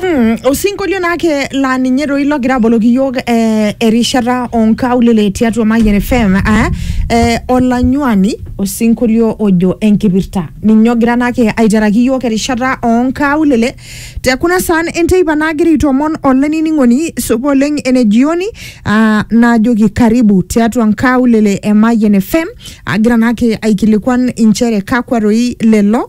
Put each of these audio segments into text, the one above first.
Mm, osinkolio naa ke laa ninye doi logira aboloki iyiook eh, erishata onkaulele tiatua Mayian FM eh, eh, olanyuani osinkolio ojo enkipirta ninye ogira naake aiteraki iyiook erishata onkaulele te kuna saan enteipa naagira aitomon olainining'oni supa oleng ene jioni ah, naajoki karibu tiatua nkaulele e Mayian FM agira naake aikilikuan inchere kakwa doi lelo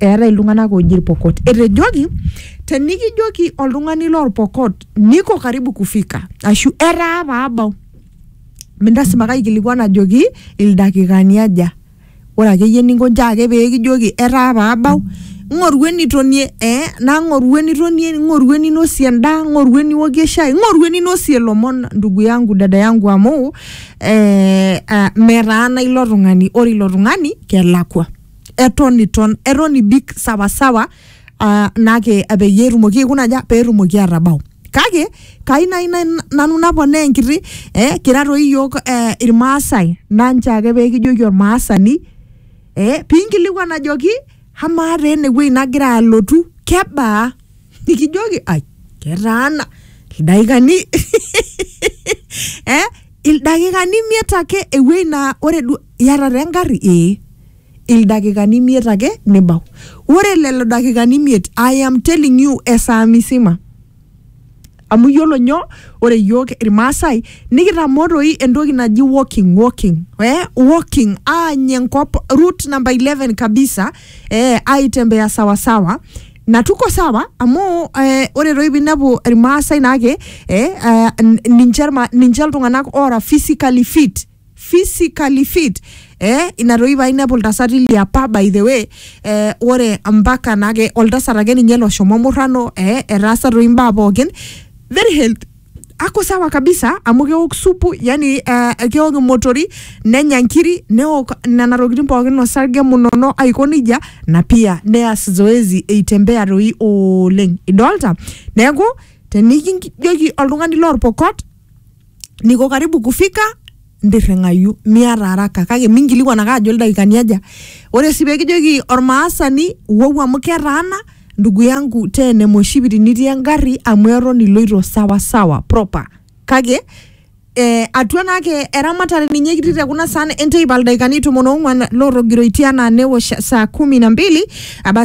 eetae iltung'anak ooji irpokot. Etejoki tenikijoki oltung'ani lorpokot niko karibu kufika ashu etaa paabau mintasima kaikilikuan ajoki ildakikani aja. Ore akeyie eninko nchoo ake pee kijoki etaa paabau ng'oru enitonie ee ng'oru enitonie, ng'oru eninosie endaa, ng'oru eniokie shai, ng'oru eninosie ilomon ndugu yangu, dada yangu amu ee metaana ilo tung'ani, ore ilo tung'ani kelakua. eton iton eton ibik sawasawa uh, nake peyie etumoki aikuna aja petumoki atabau kake kai nai nai- nanu naponaa enkiti eh, kira toi iyiok eh, irmaasai nanche ake pekijoki ormaasani eh, pinkilikuan ajoki amaa taa enewueji nagira alotu kebaa nikijoki ai ketaana ildaikani eh, ildakikani imiet ake ewueji naa ore duo iyata taa engarri ee ildakikani imiet ake nibau ore lelo dakikani imiet I am telling you esaa misima amu iyiolo nyoo ore iyiok irmaasai nikitamoo toi entoki naji walking walking eh walking aany enkop route number 11 kabisa eh aitembea sawa sawa na tuko sawa amu eh, ore toi pinepu irmaasai naake eh, eh, n- ninche irma- ninche iltung'anak ora physically fit physically fit eh ina toi painepu iltasati liapa by the way eh, ore mpaka naake oltasat ake ninye loshomo murrano eh, etaasa toi imbaa pookin very health ako sawa kabisa amu keok supu yani eh, keok imotori nenya nkiri neok nena tokitin pookin osarge munono aiko nejia na pia neas zoezi eitembea toi oleng idolta neeku tenikijoki oltung'ani lorpokot niko karibu kufika ntirring'ayu miata araka kake minkilikwan ake ajo ildaikani aja ore sii pekijoki ormaasani wou amu ketaana ndugu yangu tee ene moshipiti nitii engarri amu eton iloito sawa sawa proper kake eh, atua naake eramatare ninye kitii te kuna saan enteipa ildaikani tomon ong'wan lotogiroitie anaa newosh saa kumi na mbili abasi